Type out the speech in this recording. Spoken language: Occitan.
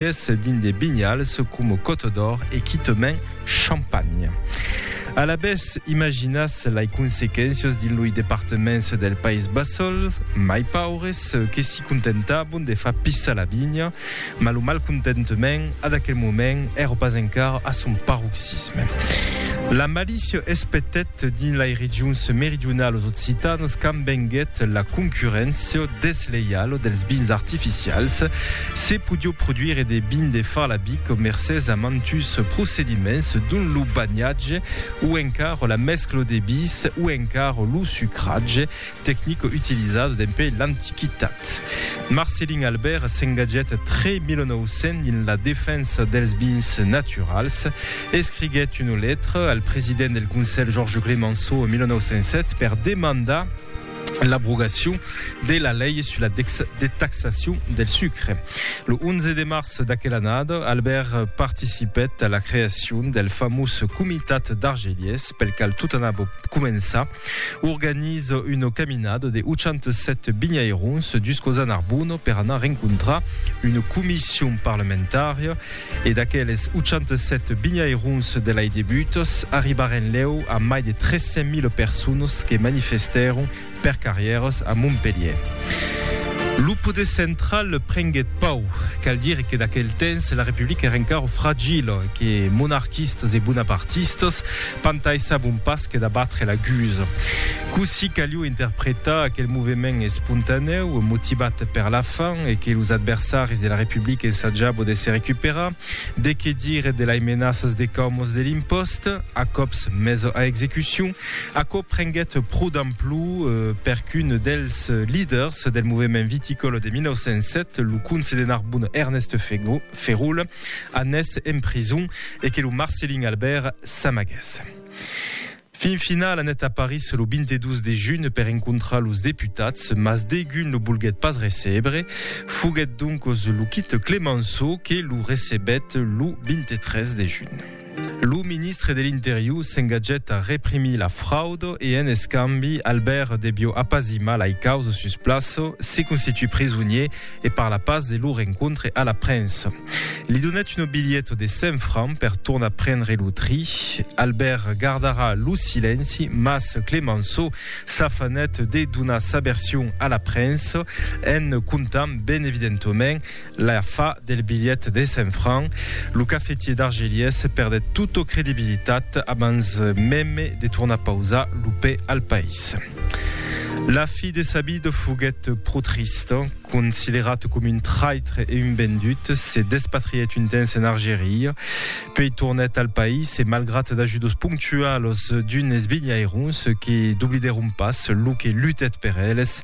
Qu'es dins de vinhals coma Côte d'Or e quitament Champagne. Alavetz, imaginatz lei consequéncias dins loi departements del País Bassol, mai paures, que si contentabon de far pissar la vinha, mas lo malcontentement, ad aquel moment, èra pas encara a son paroxisme. La malícia es petèt, Dins lai regions meridionalos occitanas quand venguèt la concurréncia desleiala dels vins artificials, se podió produire de vin de Farlabic mercés a mantus procediments dont lo banhatge o encara la mescla de bis o encara lo sucratge, tecnico utilizado dempè l'antiquitat. Marcelin Albert s'engatgèt tre 1900 dins la defensa dels bins naturals. Escriguèt una letra al president del Conselh Georges Clemenceau en 1907 per demandar l'abrogacion de la lei sus la detaxacion del sucre. Lo 11 de març d'aquela annada, Albert participèt a la creacion del famós Comitat d'Argelies, pel qual tot anava començar. Organiza una caminada de 87 binhairons juscaus a Narbona per anar rencontrar una comission parlamentària e d'aqueles 87 binhairons de lai debutas arribaren lèu a mai de 300.000 personas que manifestèron per carrièras a Montpelhièr. Lo poder central prenguèt pau. Cal dire que d'aquel temps la Republica èra encara fragila e que monarquistas e bonapartistas Pantai sabon pas que d'abatre la gusa. Cossí caliu interpretar aquel movement espontanèu, motivat per la fam, e que los adversaris de la Republica ensajabo de se recuperar? De que dire de lai menaças de caumos de l'impost, a còps mes a execucion? Aquò prenguèt pro d'amplu per qu'un dels liders del movement viticòla de 1907, lo conse de Narbona Ernest Fegó, Ferul, anés en prison e que lo Marcelin Albert s'amagués. Fin final, anèt a Paris lo 22 de junh per encontrar los deputats, mas degun lo volguèt pas recebre. Foguèt doncos lo quite Clemenceau que lo recebèt lo 23 de junh. Lo ministre de l'Interior s'engatgèt a reprimir la fraud e en escambi Albert devió apazimar lai causas sus plaça, se constituir prisonier e parlar pas de lo rencontre a la premsa. Li donèt una bilheta de 100 francs per tornar prendre lo tri. Albert gardarà lo silenci, mas Clemenço s'afanèt de donar sa version a la premsa en contant ben evidentament La fa del bilhet de cent francs, lo cafetier d'Argelies perdèt tota credibilitat abans meme de tornar pausar lo pè al país. La fi de Sabid foguèt pro trista, considerat coma un traitre e un vendut, se despatrièt un temps en Argeria, puèi tornèt al país e malgrat d'ajudos ponctualos d'unes bilhairons que doblidèron pas lo que lutèt per eles,